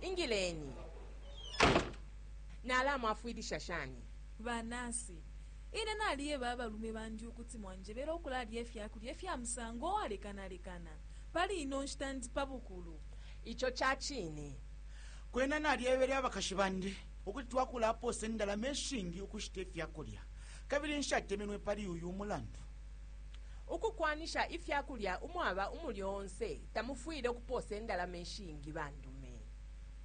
Ingileni. Nalamwafwilisha shani? Ba nasi, Ine nalieba abalume bandi ukuti mwanjebele ukulalya ifyakulya ifya musango uwalekana lekana. Pali ino nshita ndi pa bukulu. Ico cacine. Kwena nalyebele abakashi bandi ukuti twakulapoosa indalama ishingi ukushita ifyakulya, kabili nshatemenwe pali uyu umulandu. ukukwanisha ifya kulya umwaba umulyo onse, tamufwile ukupoosa indalama ishingi bandume.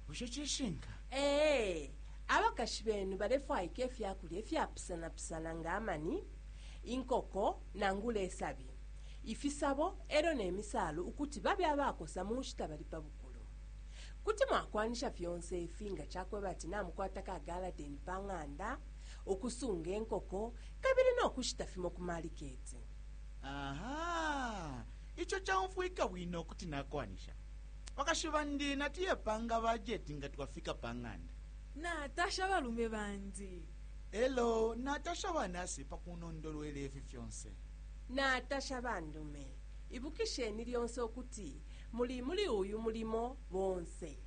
Bushe cishinka? Ee. Abakashi benu balefwaika ifya kulya ifyapusanapusana nga amani, inkoko, nangula isabi, ifisabo e lyo ne misaalu ukuti babe abakosa mu nshita bali pa bukulu. Kuti mwakwanisha fyonse ifi nga ca kweba ati namukwata ka galadeni pa ng'anda, ukusunga inkoko, kabili no kushita fimo ku maliketi. Aha, ico caumfwika bwino kuti nakwanisha. Bakashi bandi natuye panga bajeti nga twafika pa ng'anda. Natasha balume bandi. Elo natasha banasi pa kunondolwela ifi fyonse. Natasha bandume. Ibukisheni lyonse ukuti muli muli uyu mulimo bonse.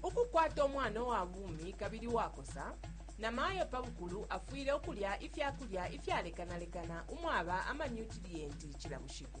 Ukukwata umwana uwa bumi kabili uwakosa, namayo pa bukulu afwile ukulya ifya kulya ifyalekanalekana umwaba amanyutiliyenti cila bushiku.